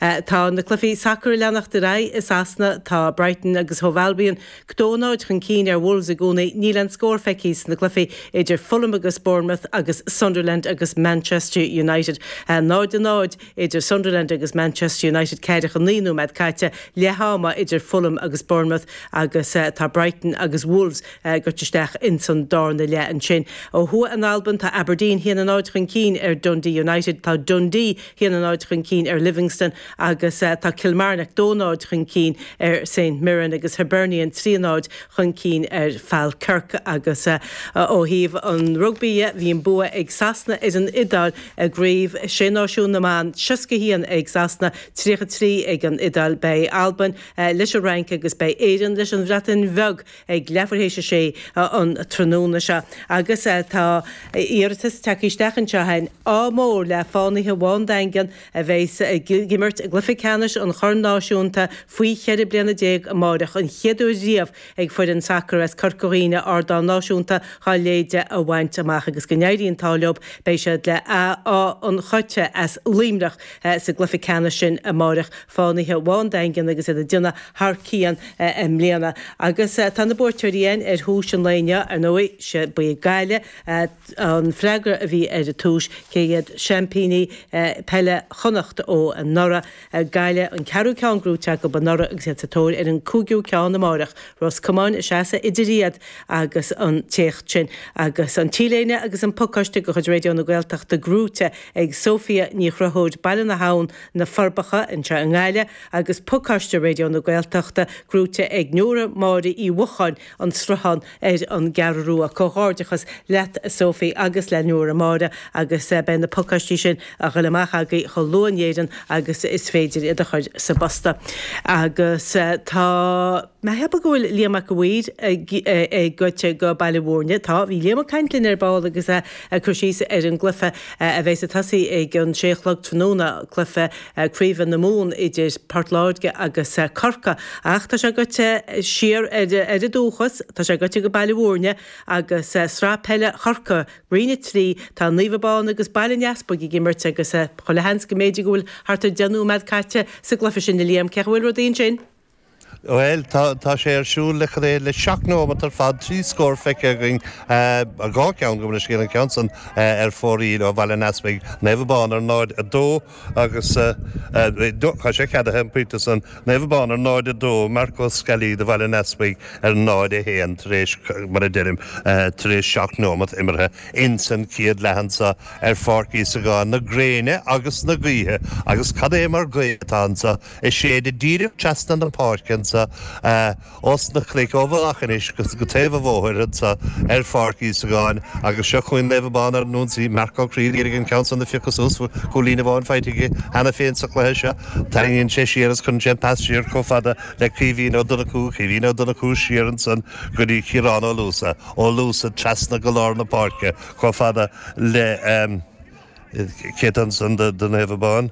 Tá na cluichí sacair ag leanacht ar aghaidh i Sasana. Tá Brighton agus Hove Albion a dó náid chun cinn ar Wolves i gcónaí. Níl aon scór feicthe sna cluichí idir Fulham agus Bournemouth agus Sunderland agus Manchester United. 0 a 0 idir Sunderland agus Manchester United ceathracha a naoi nóiméad caite, leath ama idir Fulham agus Bournemouth agus tá Brighton agus Wolves goite isteach ins an dárna leath ansin. Ó thuaidh in Albain tá Aberdeen haon náid chun cinn ar Dundee United. Tá Dundee haon náid chun cinn ar Livingston agus tá Kilmarnock dó náid chun cinn ar Saint Mirren agus Hibernian trí náid chun cinn ar Falkirk agus ó thaobh an rugbaí dhe bhí an bua ag Sasana ar an Iodáil i gcraobh Sé Náisiún na mBan, seasca haon ag Sasana, tríocha trí ag an Iodáil. Bhí Albain leis an Fhrainc agus beidh Éireann leis an Bhreatain Bheag. ag leathuair théis a sé an tráthnóna seo agus tá iarratas tagtha isteach anseo againn, ádh mór le Fánaithe Bhá an Daingin a bheidh ag imirt i gcluiche ceannais an Chorn Náisiúnta faoi cheithre bliana déag amáireach, an chéad uair riamh ag foireann sacar as Corca Dhuibhne ardán náisiúnta dhá leithéide a bhaint amach agus go n-éirí an t-ádh leob. Beidh siad le Áth an Choite as Luimneach sa gcluiche ceannais sin amáireach. Fánaithe Bhá an Daingin agus iad ag déanamh thar cionn i mbliana. Agus tá na buaiteoirí againn ar thomhais an lae inniu, ar ndóigh. Sea, ba í Gaillimh an freagra a bhí ar an tomhais, cé hiad seaimpíní peile Chonnacht ó anuraidh. Gaillimh an ceathrú ceann gnóite acub anuraidh agus iad sa tóir ar an cúigiú ceann amáireach. Ros Comáin a sheasfaidh idir iad agus an t-éacht sin. Agus an t-léine agus an pacáiste de chuid Raidió na Gaeltachta gnóite ag Sofia Ní Chruthóid, Baile na hAbhann, Na Forbacha, anseo i nGaillimh, agus pacáiste Raidió na Gaeltachta gnóite ag Nóra Máire Uí Mhocháin, An Sruthán, ar an gCeathrú Rua. Comhghairdeachas leat a Sophie agus le Nóra Máire agus beidh na pacáistí sin a ghoil amach agaibh chomh luath in Éirinn agus is féidir iad a chur sa bposta. Agus tá mé ag ceapadh go bhfuil Liam Mac a' Mhaoir goite go Baile Mhúirne. Tá, bhí Liam ag caint linn ar ball agus é Ag cur síos ar an gcluife a bheas ag tosaí ag an sé a chlog tráthnóna, cluife craoibhe na Mumhan idir Port Láirge agus Corca. Ach tá sé goite siar ar fhód a dhúchais, tá sé goite go Baile Mhúirne agus sraith peile Chorca, Roinn 3, tá Naomh Abán agus Baile an Easpaig ag imirt agus chuile sheans go mb'fhéidir go bhfuil thart ar deich nóimeád caite sa gcluife sin. A Liam, cé chaoi a bhfuil rudaí ansin? Bhuel, tá, tá sé ar siúl le, cad é, le seacht nóimeat ar fad, trí scór feicthe againn, dhá cheann, gabh mo leithscéal, an ceann san ar fóraoil ó Bhaile an Easpaig, Naomh Abán ar 0, 2 agus, tá sé ceadaithe an pointe san, Naomh Abán ar 0, 2, Marc Ó Sceallaí do Bhaile an Easpaig ar 0, 1 tar éis, mar a deirim, tar éis seacht nóimeat imeartha ins an chéad leath anso ar Pháirc Íosagáin na gréine agus na gaoithe agus cad é mar ghaoth atá anso. Ag séideadh díreach treasna na páirce annso ós na cnuic ó Mhullach an Ois go taobh an bhóthair annso ar Pháirc Íosagáin agus seo chugainn Naomh Abán ar an ionsaí. Marc Ó Críod, d'éirigh leis an ceann san do phiocadh suas, bhfuil cúilín amháin faighte aige cheana féin sa cluiche seo. Tarraingíonn sé siar is cuireann sé an pas siar comh fada le Caoimhín Ó Donnacú, Caoimhín Ó Donnacú siar ansan go dtí Ciarán Ó Luasa, Ó Luasa treasna go lár na páirce comh fada le, cé tá ansan do Naomh Abán?